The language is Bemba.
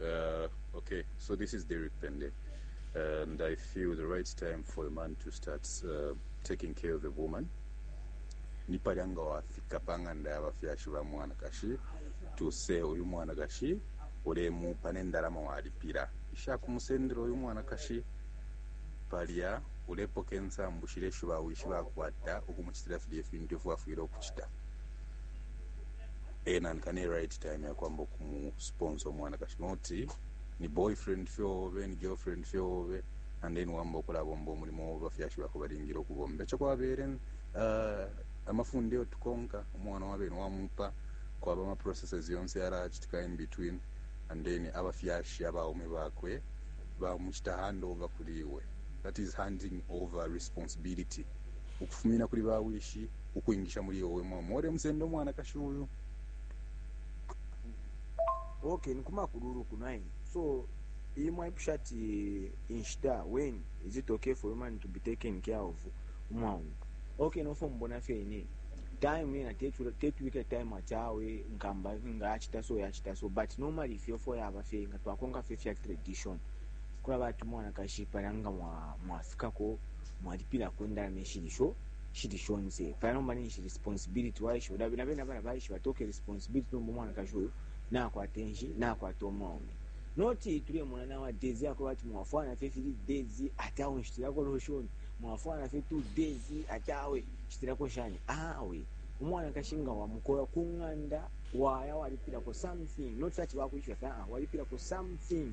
Uh, okay, so this is Derek Pende, and I feel the right time for a man to start uh, taking care of a woman. ni palya nga wafika pa ng'anda y'abafyashi ba mwanakashi tuse uyu mwanakashi ulemupa n'endalama walipira ishakumusendera uyu mwanakashi palya ulepoka ensambu shilya isho bawishi bakwata ukumucitira filya ifintu ifyo bafwile ukucita e nanka ne right time yakwamba ukumusponsa umwanakashi not ni boyfriend fye obe ni girlfriend fye obe and then wamba ukulabomba umulimo obe bafyashi bakho balingile ukubomba eco kwabele uh, amafunde yo tukonka umwana wabene wamupa kwaba ama processes yonse yalachitika in between and then abafyashi abaume bakwe bamuchita hand over kuli iwe that is handing over responsibility ukufumina kuli bawishi ukwingisha muli yo we mwaume wale musenda umwanakashi uyu. Okay, ni kumakululu ku 9. So, iyi mwaipusha ati inshita when is it okay for woman to be taken care of umwaume. Okay, nofo mbona fye ine time ina tetubike time ati awe nkamba nga achita so yachita so but normally if you for yaba fye nga twakonka fye fya tradition kula bati mwanakashi pala nga mwafikako mwa mwalipilako indalama ishili sho shili shonse paya nomba ninshi responsibility waishiba dabi na bena bana baishiba toke responsibility nomba mwanakashi uyu nakwata enshi nakwata umwaume noti tulemona nawa days yako bati mwafwana fye fili days ati awe nshitilako lotion mwafwana fye two days ati awe nshitilako shani awe umwanakashi nga wamukola ku ng'anda waya walipilako something noti ati bakwishiba fye ah walipilako something